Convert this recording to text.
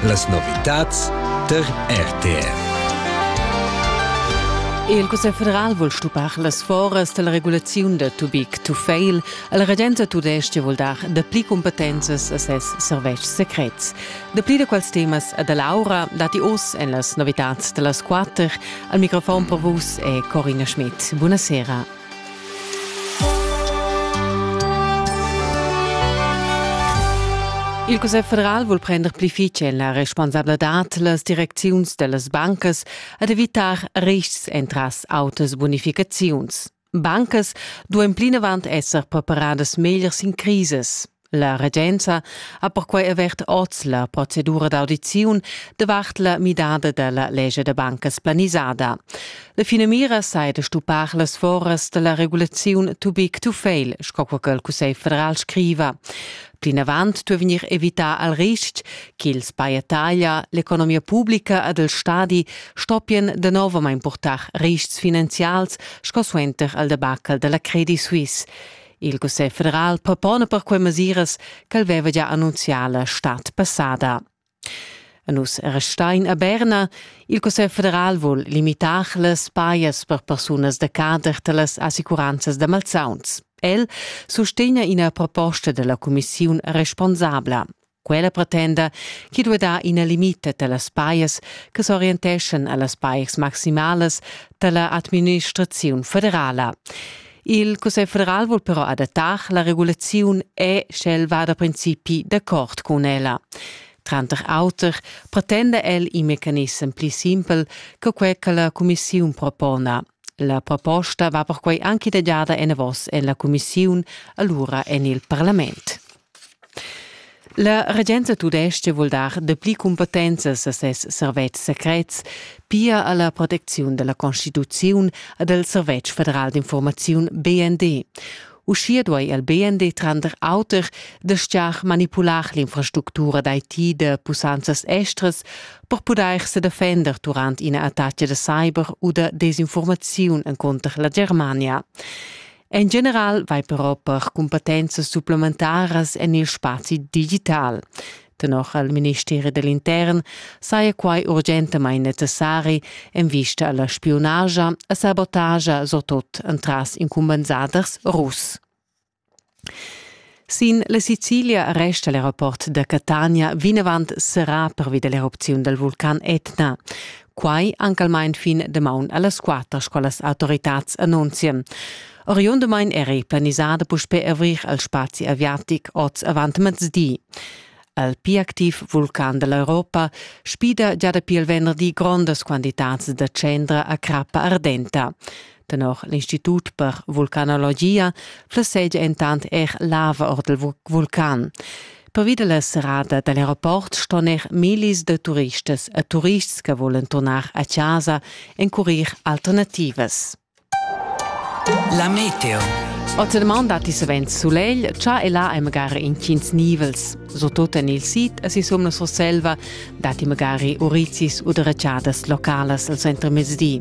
Las novitads der RTR. Il Cussegl federal vul stupar las foras dalla regulaziun da too big to fail. La regenza tudestga vul dar dapli cumpetenzas a ses servetschs secrets. Dapli da quels temas a da Laura dati oz en las novitads da las quatter. Al microfon per vus è Corina Schmidt. Buonasera. Il Cussegl federal vul prender pli fitg la responsabladad las direcziuns dellas bancas ad evitar riscs entras autas bonificaziuns. Bancas duein plinavant esser preparadas meglier sin crises. La regenza ha perquai avert oz la procedura d'audiziun davart la midada da la legge da bancas planisada. La finamira sai da stuppar las foras da la regulaziun too big to fail, sco che il Cussegl federal scriva. Plinavant duo vegnir evità al risch ch'ils paiataglia, l'economia pubblica ed il stadi stoppien de novamain purtar riscs finanzials sco suenter al debacle della Credit Suisse. Il Cussegl federal propona per quei mesiras ch'el veva già annunzià la stad passada. A nus restein a Berna. Il Cussegl federal vul limitar las pajas per persunas da cader dallas assicuranzas da malsauns. El sustegna ina proposta della cumissiun responsabla. Quella pretenda chi duai dar ina limita da las pajas che s'orienteschan a las pajas maximalas da la administraziun federala. Il Cussegl federal vul però adattar la regulaziun e sch'el va da principi d'accord cun ella. Tranter auter pretenda el in mecanissem pli simpel che quel che la cumissiun propona. La proposta va perquai anche idegiada enavos en la cumissiun, allura en il parlament. La regenza tudestga vul dar dapli cumpetenzas a ses servetschs secrets, pia a la protecziun da la constituziun ed al servetsch federal d'infurmaziun BND. Uschia duai il BND tranter auter dastgar manipular l'infrastructura d'IT da pussanzas estras per pudair se defender durant ina attacca da cyber u da desinformaziun encunter la Germania. En general vai però per cumpetenzas supplementaras en il spazi digital. Tenor al ministeri dell'intern saja quai urgentamain necessari en vista alla spionagia e sabotagia surtut entras incumbensaders russ. Sin la Sicilia resta l'aeroport da Catania vinavant serrà pervi da l'erupziun dal vulcan Etna. Quai anc almain fin damaun a las quatter, sco las autoritads annunzian. Oriundamain eri planisada puspè avrir al spazi aviatic oz avant mezdi. Al pli activ vulcan da l'Europa spida gia dapi il venderdi grondas quantitads da tschendra a crappa ardenta. Tenor l'Institut per vulcanologia flessegia entant er lava ord il vulcan. Pervi dalla serrada dall'aeroport ston er millis de turistas e turists che volen tornar a casa encurir alternativas. La meteo. Ozeman datti savens sulegl, cha e là è magari intgins nivels. Sotot en il sid e sisum la Surselva datti magari uricis u deracciadas localas al centro mezdi.